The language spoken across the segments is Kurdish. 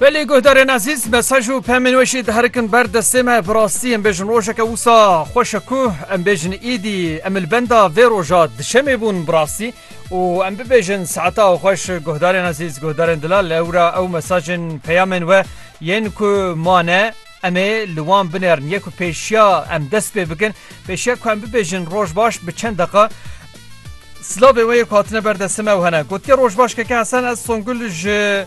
Belê guhdarên ezîz mesaj û pemên wê jî diherikin ber destê me bi rastî em bêjin rojeke wisa xweş e ku em bêjin îdî em li benda vê roja dişemê bûn bi rastî û em bibêjin saeta xweş guhdarên ezîz guhdarên dilal ewra ew mesajên peyamên we yên ku mane Em ê li wan binerin yê ku pêşiya em dest pê bikin, pêşiya ku em bibêjin roj baş bi çend deqa silavên wê yê ku hatine ber destê me ew hene. Gotiye roj baş keke Hesen ez Songul ji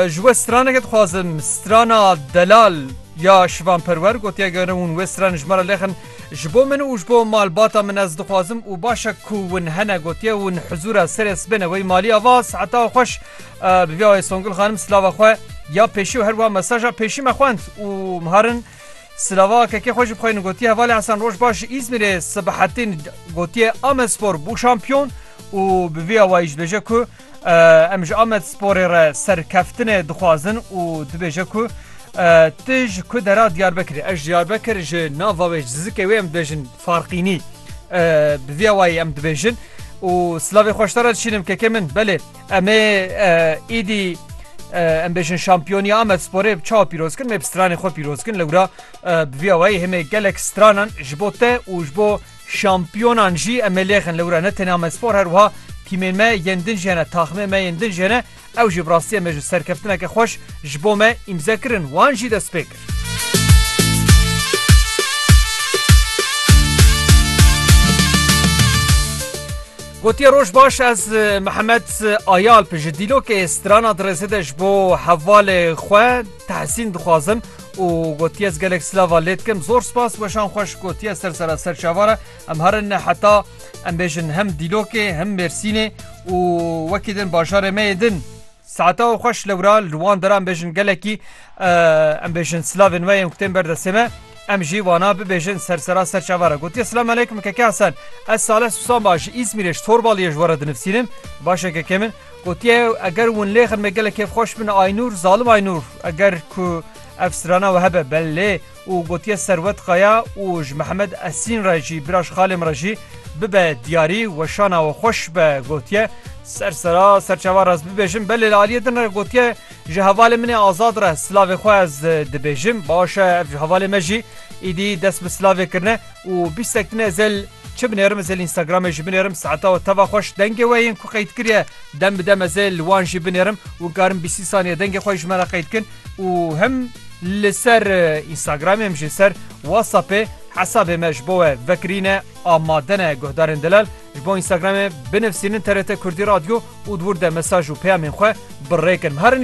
ji we straneke dixwazim strana delal ya şivan perwer gotiye gerin hûn wê stranê ji me re lêxin ji bo min û ji bo malbata min ez dixwazim û başe ku hûn hene gotiye hûn hizûra serê sibêne wey malî ava saeta xweş Bi vî awayê Songul xanim silava xwe ya pêşî û herwiha mesaja pêşî me xwend û miharin silava kekê xwe jî bixwînin gotiye hevalê Hesen roj baş ji Îzmîrê sibihetîn gotiye Amedspor bû şampiyon û bi vî awayî ji bêje ku em ji Amedsporê re serkeftinê dixwazin û dibêje ku Ti ji ku dera Diyarbekirê ez Diyarbekir ji nava wê zizikê wê em dibêjin farqînî bi vî awayî em dibêjin û silavê xweştara dişînim kekê min belê Em ê êdî em bêjin şampiyonî Amed Sporê bi çawa pîroz kin mê bi stranê xwe pîroz kin lewra bi vî awayî hemê gelek stranan ji bo te û ji bo şampiyonan jî em ê lêxin lewra ne tenê Amed Spor her wiha tîmên me yên din jêne taxmê me yên din jêne ew jî bi rastiyê me ji serkeftineke xweş ji bo me îmze kirin wan jî destpêk Gotiye roj baş ez Mihemed Ayalp ji dîlokê strana dirêzê de ji bo hevalê xwe tehsîn dixwazim û gotiye ez gelek silava lê dikim zor spas weşan xweş gotiye ser sera ser çavara em herin heta em bêjin hem dîlokê hem mêrsînê û wekî din bajarê me yê din. Saeta xwe xweş lewra li wan deran bêjin gelekî em bêjin silavên we yên ku tên ber destê me em jî wana bibêjin ser sera ser çavara gotiye silam aleykum keke Hasan ez Saleh Susan ba ji Îzmîrê ji Torbaliyê ji we re dinivsînim başe keke min gotiye eger win lêxin me gelek kêfxweş bin Aynûr zalim Aynûr eger ku ev strana we hebe bel lê û gotiye Serwet Kaya û ji Mihemed Esîn re jî bira ji xalê min re jî bibe diyarî weşana we xweş be gotiye. Ser sera serçava re ez bibêjim belê li aliyê din re gotiye ji hevalê min ê Azad re silavê xwe ez dibêjim baş e ev ji hevalê me jî îdî dest bi silavê kirine û bîstek din ez ê çi binêrim ez ê li Instagramê jî binêrim saeta we teva xweş dengê we yên ku qeyd kiriye dem bi dem ez ê li wan jî binêrim wikarim bîsî saniye dengê xwe ji me re qeyd kin û him li ser Instagramê him jî ser Whatsappê hesabê me ji bo we vekirîne amade ne guhdarên delal ji bo Instagramê binivîsînin TRT Kurdî Radyo û di wir de mesaj û peyamên xwe bi rê kin. Herin